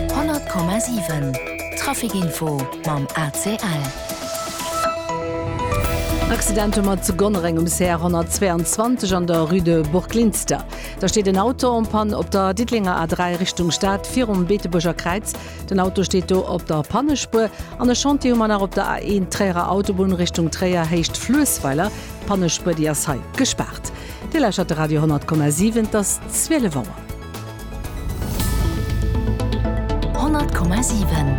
100,7 Traficinfo mam ACL. Accident hu mer zu Gonnereng um CR 122 an der Rue de Burglinster. Da steet en Auto en Panne op der Diddelenger A3 Richtung Stad virum Beetebuerger Kräiz. Den Auto steet do op der Pannespuer. An e Chantier hu mer nach op der A1 Tréierer Autobunn Richtung Tréier Héicht Fluessweiler. D'Pannespuer déi ass hei gespaart. Dir lauschert de Radio 10,7, et ass 12 Auer. 100,7.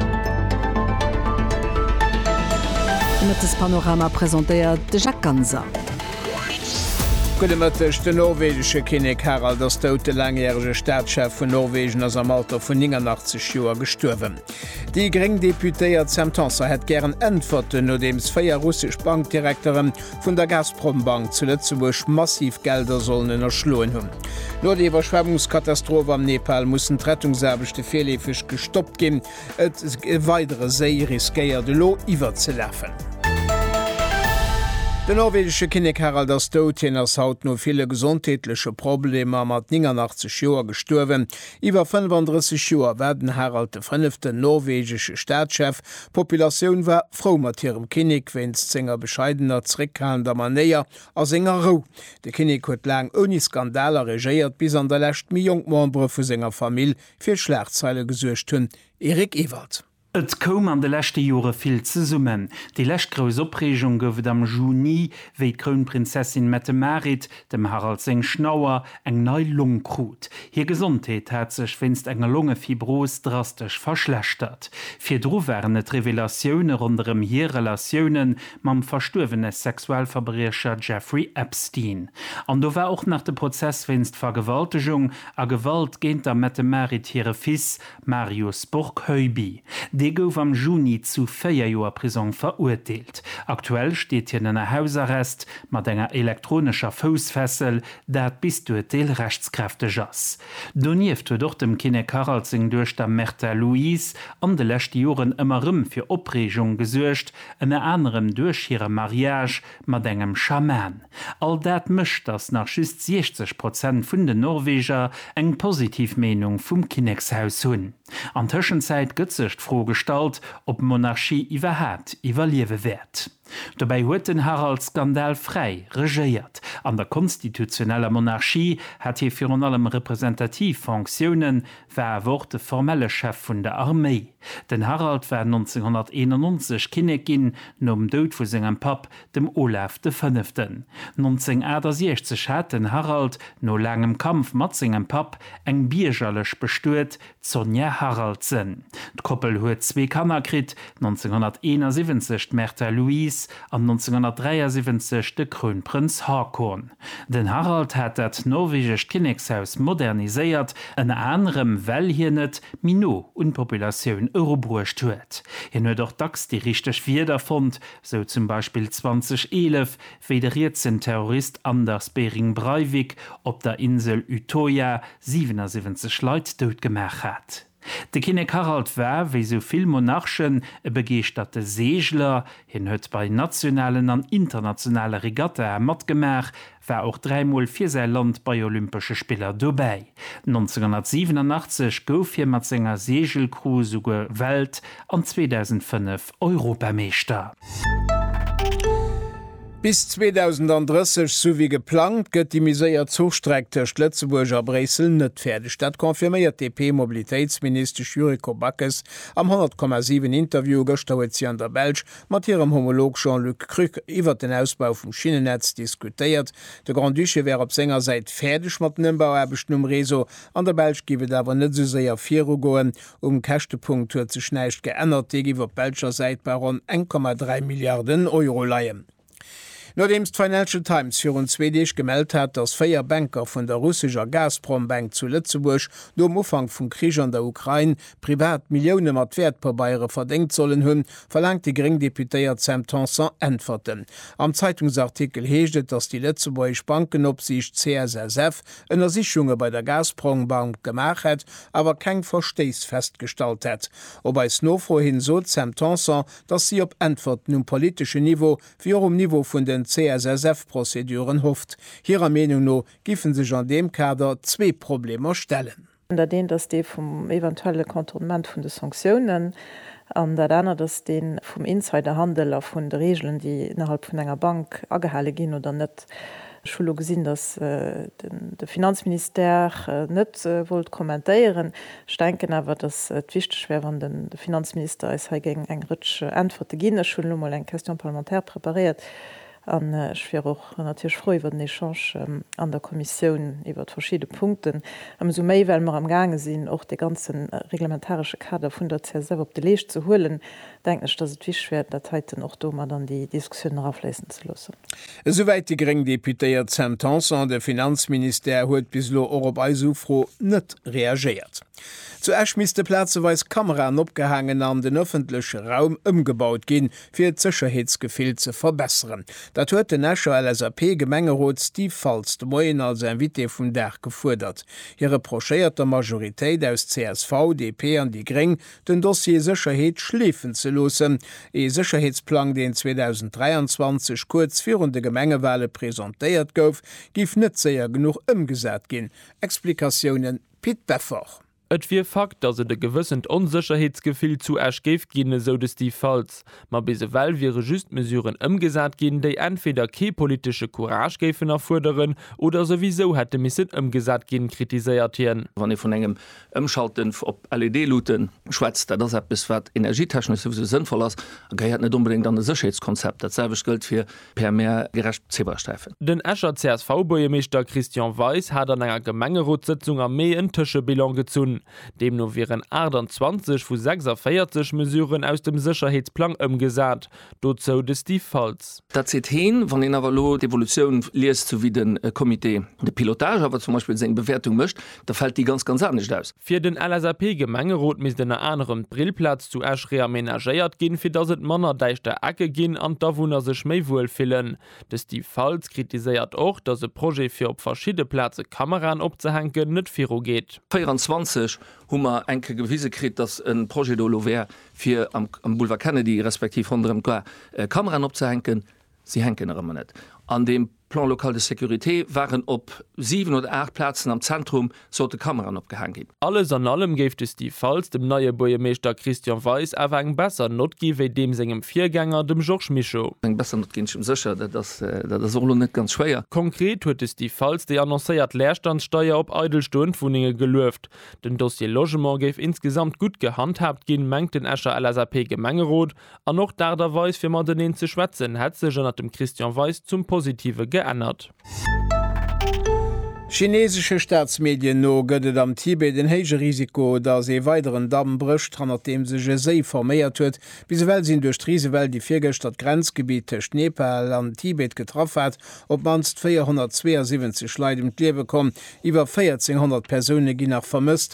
De Mëttespanorama presentéiert de Jacques Ganser. Gudde Mëtteg, Den norwegesche Kinnek Harald ass dout. De laangjärege Staatschef vun Norwegen ass am Alter vun 89 Joer gestuerwen. Déi gréng Deputéiert Sam Tanson hätt gären Äntwerten, nodeems 4 russesch Bankdirekteren vun der Gazprombank zu Lëtzebuerg massiv Gelder sollen ënnerschloen hunn. No der Iwwerschwemmungskatastroph am Nepal mussen d'Rettungsaarbechte virleefeg gestoppt ginn. E weidere Séi riskéiert elo iwwerzelafen. Den norwegesche Kinnek Harald ass dout. Hien ass haut no ville gesondheetleche Problemer mat 89 Joer gestuerwen. Iwwer 35 Joer war den Harald de Fënneften norwegesche Staatschef, D'Populatioun war frou mat hirem Kinnek wéinst senger bescheidener, zréckhalender Manéier a senger Rou. De Kinnek huet laang ouni Skandaler regéiert, bis an der Lescht méi jonk Membere vu senger Famill fir Schlagzeile gesuergt hunn, Eric Ewald. Et koum an de leschte Jore vill zesummen. Déi lescht grouss Opreegung gouf et am Juni, wéi d'Krounprinzessin Mette-Marit Dem Harald seng Schnauer eng nei Long krut. Hir Gesondheet hat sech wéinst enger Longefibros drastesch verschlechtert. Virdru waren et Revelatioune ronderëm hir Relatioune mam verstuerwene Sexualverbriecher Jeffrey Epstein. An do war och nach de Prozess wéinst Vergewaltegung a Gewalt géint der Mette-Marit hire Fils Marius Burgheubi, dee gouf am Juni zu 4 Joer Prisong verurteelt. Aktuell steet hien ënner Hausarrest mat enger elektronescher Foussfessel, dat bis d'Urteel rechtskräfteg ass. Donieft huet och dem Kinnek Harald seng Duechter Märtha Louise an de leschte Joren ëmmer rëm fir Opreegung gesuergt, ënner anerem duerch hire Mariage Mat engem Schaman. All dat mécht, datt nach just 60 Prozent vun den Norweger eng positiv Meenung vum Kinnekshaus hunn. An Tëschenzäit gëtt sech d'Fro gestallt, ob d'Monarchie iwwerhaapt iwwerliewe wäert. Dobäi huet den Harald skandalfräi regéiert. An der konstitutioneller Monarchie hat hie virun allem representativ Fonctiounen, war awer och de formelle Chef vun der Arméi. Den Harald war 1991 Kinnek ginn, nom Doud vu sengem Papp, dem Olav de Fënneften. 1968 hat den Harald, no laangem Kampf mat sengem Papp, eng Biergerlech bestuet, d'Sonja Haraldsen. D'Koppel huet zwee Kanner kritt, 1971 d'Märtha Louise an 1973 de Krounprënz Haakon. Den Harald hat dat norwegescht Kinnekshaus moderniséiert, ënner anerem well hien et méi no un d'Populatioun erubruecht huet. Hien huet och dacks déi richteg Wierder fonnt, sou zum Beispill 2011, wéi de rietsen Terrorist Anders Behring Breivik op der Insel Utøya 77 Leit dout gemaach hat. De Kinnek Harald war, wéi sou vill Monarchen, e begeeschterte Seegler. Hien huet bei nationalen an internationale Regattae matgemaach, war och dräimol fir säi Land bei Olympesche Spiller dobäi. 1987 gouf hie mat senger Seegelcrew souguer Welt an 2005 Europameeschter. Bis 2030, sou wéi geplangt, gëtt déi méi séier Zuchstreck tëscht Lëtzebuerg a Bréissel net fäerdeg. Dat confirméiert d'DP-Mobilitéitsministesch Yuriko Backes am 100,7 Interview. Gëschter huet si an der Belsch mat hirem Homolog Jean-Luc Krück iwwert den Ausbau vum Schinnennetz diskutéiert. De Grand-Duché wär op senger Säit fäerdeg mat den Ëmbauaarbechten um Réseau. An der Belsch géif et awer net esou séier virugoen, Um Käschtepunkt huet sech näischt geännert, dee giff op belscher Säit bei ronn 1,3 Milliarden Euro leien. Nodeems d'Financial Times virun zwee Deeg gemellt hat, datt véier Banker vun der russescher Gazprom Bank zu Lëtzebuerg nom Ufank vum Krich an der Ukrain privat Millioune mat Wäertpabeiere verdéngt sollen hunn, verlaangt déi gréng Deputéiert Sam Tanson Äntwerten. Am Zeitungsartikel heescht et, datt déi lëtzebuergesch Bankenopsiicht, CSSF, Ënnersichunge bei der Gazprom-Bank gemaach hätt, awer keng Verstéiss festgestallt hätt. Op eis Nofro hin sot d'Sam Tanson, datt si op Äntwerten um politeschen Niveau, wéi och um Niveau vun den CSSF-Prozeduren hofft. Hirer Meenung no giffen sech an deem Kader zwee Problemer stellen. Dat eent ass dee vum eventuelle Contournement vun de Sanctiounen an dat anert ass dee vum Insiderhandel a vun de Reegelen, déi ënnerhalb vun enger Bank agehale ginn oder net. Ech hu lo gesinn, dass de Finanzministère net wollt kommentéieren. Ech denken awer, dass et wichteg wär, wann de Finanzminister eis hei géing eng Rëtsch Äntwerte ginn. Ech hunn elo mol eng Question parlementaire preparéiert, An ech wier och natierlech frou iwwer den Echange an der Kommissioun iwwer verschidde Punkten, ëmsou méi well mer am gaange sinn, och dee ganze reglementaresche Kader vun der CSF op de Leescht ze huelen, denken ech, dass et wichteg wär, dat heiten och do mat an déi Diskussioun erafléissen ze loossen. Esouwäit déi gréng Deputéiert Sam Tanson. De Finanzministère huet bis elo och op eis Ufro net reagéiert. Zu Esch misste plazeweis Kameraen opgehaangen an den ëffentleche Raum ëmgebaut ginn, fir d'Sécherheetsgefill ze verbesseren. Dat huet den Escher LSAP-Gemengerot Steve Faltz de Moien als Invité vum Dag gefuerdert. Hie reprochéiert der Majoritéit aus csv, DP an déi gréng, den Dossier Sécherheet schleefen ze loossen. Ee Sécherheetsplang, deen 2023 kuerz virun de Gemengewale presentéiert gouf, géif net séier genuch ëmgesat ginn. Explikatiounen, Pit Beffort. Et wier Fakt, datt et e gewëssent Onsécherheetsgefill zu Esch géif ginn, esou de Steve Faltz. Ma bis ewell wiere just Mesuren ëmgesat ginn, déi entweder kee politesche Courage géifen erfuerderen oder souwisou hätte missen ëmgesat ginn, kritiséiert hien. Wann ee vun engem Ëmschalten op LED-Luutte schwätzt, dat ass eppes, wat energietechnesch souwisou sënnvoll ass a gehéiert net onbedéngt an e Sécherheetskonzept. Dat selwecht gëllt fir per Maire gerecht Zebrasträifen. Den Escher CSV-Buergermeeschter Christian Weis hat an enger Gemengerotssëtzung am Mee en Tëschebilan gezunn. Deemno wieren 28 vu 46 Mesuren aus dem Sécherheetsplang ëmgesat. Dozou de Steve Faltz. Dat seet heen. Wann een awer elo d'Evolutioun liest, sou wéi de Comité de pilotage awer zum Beispill seng Bewäertung mécht, Da fält déi ganz, ganz anescht aus. Fir den LSAP-Gemengerot misst ënner anerem d'Brillplaz zu Esch reamenagéiert ginn, fir datt et manner däischter Ecke ginn an d'Awunner sech méi wuel fillen. De Steve Faltz kritiséiert och, datt e Projet fir op verschidde Plaze Kameraen opzehänken net virugeet. 24 hu mer eng Kéier gewise kritt, datt e Projet do elo wär fir am Boulevard Kennedy respektiv ronderëm d'Gare Kameraen opzehänken. Si hänken erëm an et. An deem Plan local de sécurité waren op 7 oder 8 Plazen am Zentrum sollte Kameraen opgehaang ginn. Alles an allem géif de Steve Faltz dem neie Buergermeeschter Christian Weis awer eng besser Nott gi wéi deem sengem Virgänger, dem Georges Mischo. Eng besser Nott ginn, ech si mir sécher, dat ass och elo net ganz schwéier. Konkret huet de Steve Faltz déi annoncéiert Leerstandssteier op eidel stoend Wunnenge gelueft. Den Dossier Logement géif insgesamt gutt gehandhaabt ginn, mengt den Escher LSAP-Gemengerot. An och d'Aart a Weis fir mateneen ze schwätzen hätt sech ënnert dem Christian Weis zum Positive geännert. Chineesesche Staatsmedien no gëtt et am Tibet en héije Risiko, datt ee weideren Damm brécht, hannert deem sech e Séi forméiert huet. Bis ewell sinn duerch d'Risewell, déi virgëschter d'Grenzgebitt tëscht Nepal an Tibet getraff hat, op d'mannst 472 Leit ëm d'Liewe komm. Iwwer 1.400 Persoune ginn nach vermësst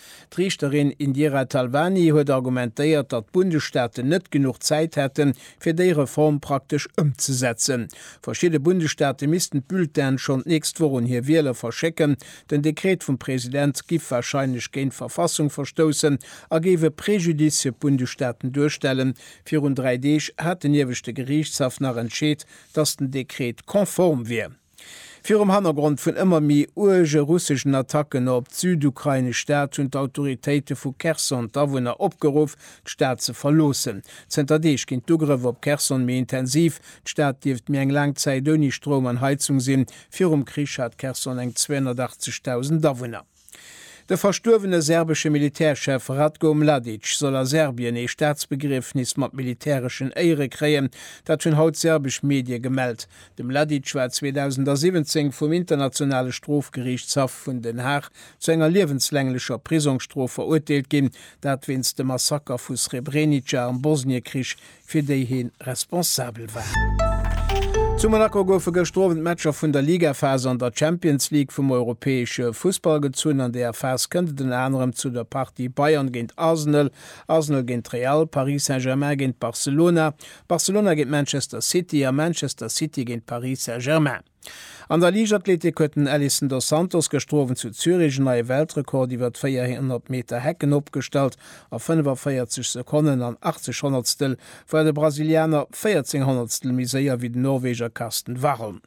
D'Riichterin Indira Talwani huet argumentéiert, datt d'Bundesstaaten net genuch Zäit hätten, fir déi Reform praktesch ëmzesetzen. Verschidde Bundesstaate missten d'Bulletine schonn d'nächst Woch un hir Wieler verschécken. Den Dekret vum President giff warscheinlech géint d'Verfassung verstoussen a géif e Prejudice fir d'Bundesstaaten duerstellen. Virun dräi Deeg hat den Ieweschte Geriichtshaff nach entscheet, datt den Dekret konform wier. Virum Hannergrond vun ëmmer méi uerge russeschen Attacken op d'südukrainesch Stad hunn d'Autoritéite vu Cherson d'Awunner opgeruff, d'Stad ze verloossen. Zënter Deeg ginn d'Ugrëff op Cherson méi intensiv. D'Stad dierft méi eng laang Zäit ouni Stroum an Heizung sinn. Virum Krich hat Cherson eng 280.000 Awunner. De verstuerwene serbesche Militärchef Ratko Mladic soll a Serbien ee Staatsbegriefnis mat militäreschen Éiere kréien. Dat hunn haut serbesch Medie gemellt. De Mladic war 2017 vum Internationale Strofgeriichtshaff vun Den Haag zu enger liewenslänglecher Prisongsstrof verurteelt ginn, dat wéinst dem Massaker vu Srebrenica am Bosniekrich fir déi hien responsabel war. Zu Monaco goufe gëschter Owend d'Matcher vun der Ligaphas an der Champions League vum europäesche Fussball gezunn. An deeër Phas kënnt et ënner anerem zu der Partie Bayern géint Arsenal, Arsenal géint Real, Paris Saint-Germain géint Barcelona, Barcelona géint Manchester City a Manchester City géint Paris Saint-Germain. An der Liichtathletik huet den Elison dos Santos gëschter Owend zu Zürich en neie Weltrekord iwwert 400 Meter Hecken opgestallt. A 45 Sekonnen an 80 Honnertstel war de Brasilianer 14 Honnertstel méi séier wéi den Norweger Karsten Warholm.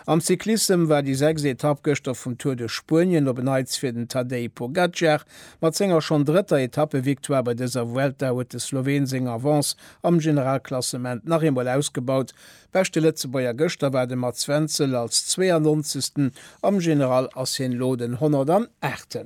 Am Cyclissem war déi sechst Etapp gëschter vum Tour de Spuenien op en Neits fir den Tadej Pogacar. Mat senger schonn drëtter Etappevictoire bei dëser Vuelta huet de Sloween seng Avance am Generalklassement nach eemol ausgebaut. Beschte Lëtzebuerger gëschter war de Mats Wenzel als 92. Am General ass hien elo den 108.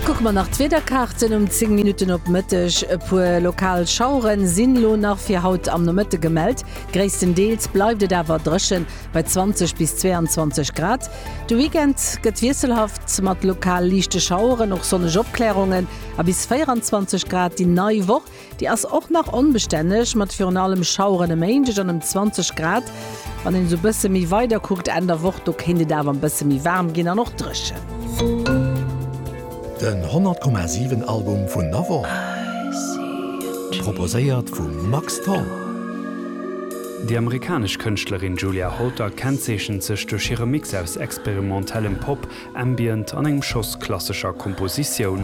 Kucke mer nach d'Wiederkaarten, Um 10 Minutten op Mëtteg e puer lokal Schauere sinn elo nach fir haut am Nomëtte gemellt. Gréisstendeels bleift et awer dréchen, bei 20 bis 22 Grad. De Weekend gëtt wiesselhaft, mat lokal liichte Schaueren, och sonneg Opklärungen. a bis 24 Grad déi nei Woch. Déi ass och nach onbestänneg, mat virun allem Schaueren e Méindeg an ëm 20 Grad. Wann een esou e bësse méi weider kuckt, Enn der Woch, do kéint et awer e bësse méi waarm ginn an och dréchen. Den 100,7 Album vun der Woch, proposéiert vum Max Tholl. Déi amerikanesch Kënschtlerin Julia Holter kennzeechent sech duerch hire Mix aus experimentellem Pop, Ambient an engem Schoss klassescher Kompositioun.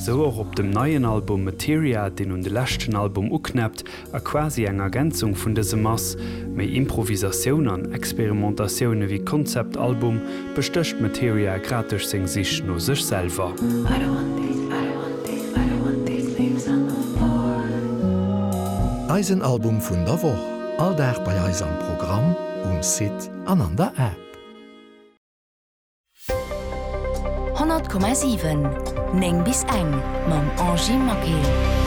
Sou och op dem neien Album Materia, deen un de leschten Album uknäppt a quasi eng Ergänzung vun dësem ass. Méi Improvisatioun an Experimentatioun ewéi Konzeptalbum bestécht Materia grad duerch seng Sich no sech selwer. Eisen Album vun der Woch, all Dag bei eis am Programm, um Site an an der App. 100,7 9 bis eng mam Angie Maquet.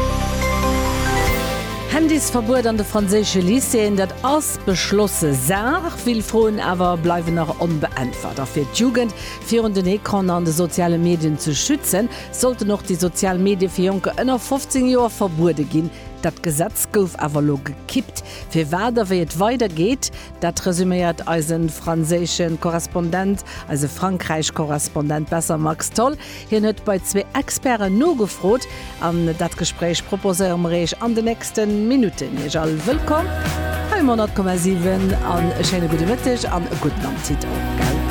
Handysverbuet an de franséische Lycéeën, dat ass beschlosse Saach. Vill Froen awer bleiwen nach onbeäntwert. A fir d'Jugend virun den Ecranen an de soziale Medien ze schützen, sollten och déi sozial Medie fir Jonker ënner 15 Joer verbuede ginn. Dat Gesetz gouf awer elo gekippt. Firwat a wéi et weidergeet, Dat resüméiert eise franséische Korrespondent, eise Frankräich-Korrespondent besser, Max Tholl. Hien huet bei zwee Experten nogefrot an dat Gespréich proposéiere mer Iech an den nächste Minutten. Iech all wëllkomm hei um 100,7 an e schéine gudde Mëtteg an e gudden Appetit och, gell?